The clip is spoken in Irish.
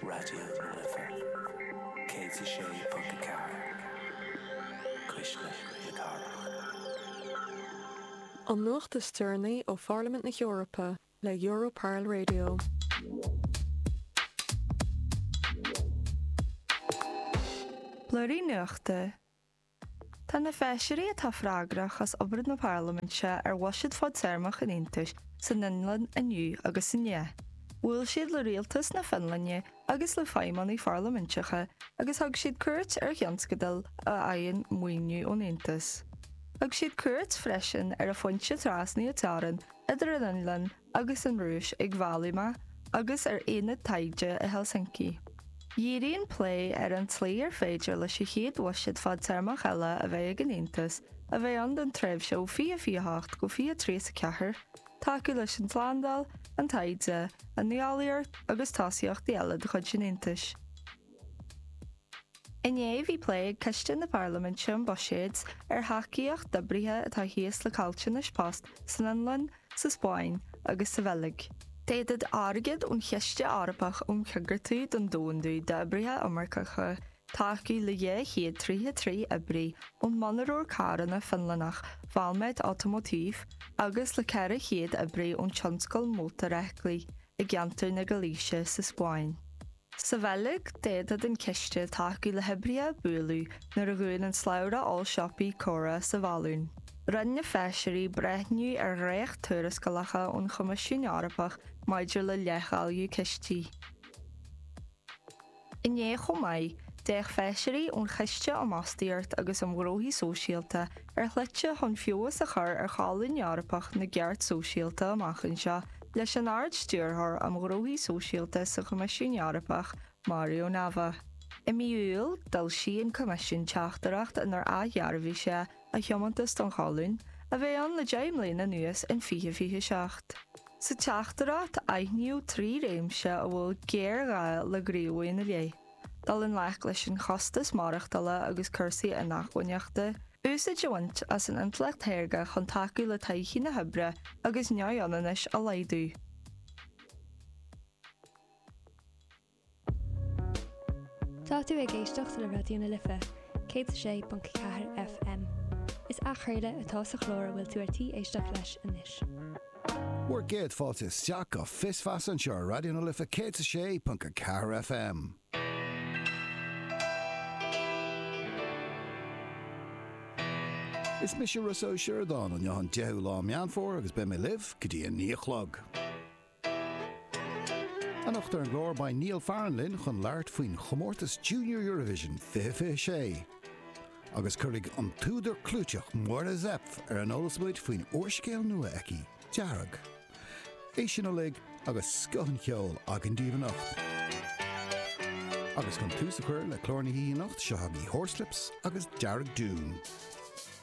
Raidió na Life 106.4, cuisle na cathrach. An nuacht is deireanaí ó Pharlaimint na hEorpa le Europarl Radio. Blúirí nuachta Tá na feisirí atá freagrach as obair na Parlaiminte ar bhuiséad fadtéarmach an Aontais san Fhionlainn inniu agus inné. Bhuail siad le rialtas na Fionlainne agus le feidhmeannaigh pharlaiminteacha agus thug siad cuairt ar thionscadail a fhaigheann maoiniú ón Aontas. Thug siad cuairt freisin ar an phointe trasnaithe teorann idir an Fhionlainn agus an Rúis ag Vailima agus ar Ionad Taighde i Helsinki. Dhírigh an plé ar an tslí ar féidir leis an chéad bhuiséad fadtéarmach eile a bheidh ag an Aontas, a bheidh ann don tréimhse ó 2028 go 2034, tacú leis an tslándáil, an taighde, an nuálaíocht agus tosaíochtaí eile de chuid an Aontais. Inné bhí plé ag Coiste na Parlaiminte um Buiséid ar thacaíocht d'oibrithe atá thíos le caillteanais post san Fhionlainn, sa Spáinn agus sa Bheilg. D'fhéadfadh airgead ón Chiste Eorpach um Choigeartú don Domhandú d'Oibrithe Iomarcacha tacú le 233 oibrí ón mhonaróir carranna Fionlannacha Valmet Automotive agus le 400 oibrí ón tionscal mótarfheithiclí i gceantar na Gailíse sa Spáinn. Sa Bheilg, d'fhéadfadh an ciste tacú le hoibrithe a buaileadh nuair a dhún an slabhra ollsiopaí Cora sa Vallúin. Rinne feisirí breithniú ar dhréacht-tuarascálacha ón Choimisiún Eorpach maidir le leithdháileadh cistí. Inné chomh maith, d'fhéach feisirí ón Choiste um Fhostaíocht agus um Ghnóthaí Sóisialta ar shlite chun feabhas a chur ar cholún Eorpach na gceart sóisialta amach anseo leis an Ard-Stiúrthóir um Ghnóthaí Sóisialta sa Choimisiún Eorpach, Mario Nava. I mí Iúil, d'fhoilsigh an Coimisiún teachtaireacht inar athdhearbhaigh sé a thiomantas don Cholún, a bheidh ann le deich mbliana anuas, in 2027. Sa teachtaireacht, aithníodh trí réimse a bhfuil géarghá le gníomhú ina leith. Dul i ngleic leis an chostas maireachtála agus cúrsaí inacmhainneachta. Úsáid a bhaint as an intleacht shaorga chun tacú le todhchaí na hoibre agus neamhionannais a laghdú. Tá tú ag éisteacht le Raidió na Life, 106.4 FM. Is athchraoladh atá sa chlár a bhfuil tú ar tí éisteacht leis anois. Bhur gcéad fáilte isteach go Fios Feasa anseo ar Raidió na Life 106.4 FM. Is mise Rossa Ó Sioradáin, inniu an 10ú lá Meán Fómhair agus beidh mé libh go dtí a naoi a chlog. Anocht ar an gclár beidh Niall Farren linn chun labhairt faoin chomórtas Junior Eurovision 2026. Agus cuirfidh an t-údar clúiteach Máire Zepf ar an eolas muid faoin úrscéal nua aici, Dearg. É sin uilig agus scoth an cheoil againn daoibh anocht! Agus chun tús a chur le clár na hoíche anocht, seo chugaibh Horslips agus Dearg Doom.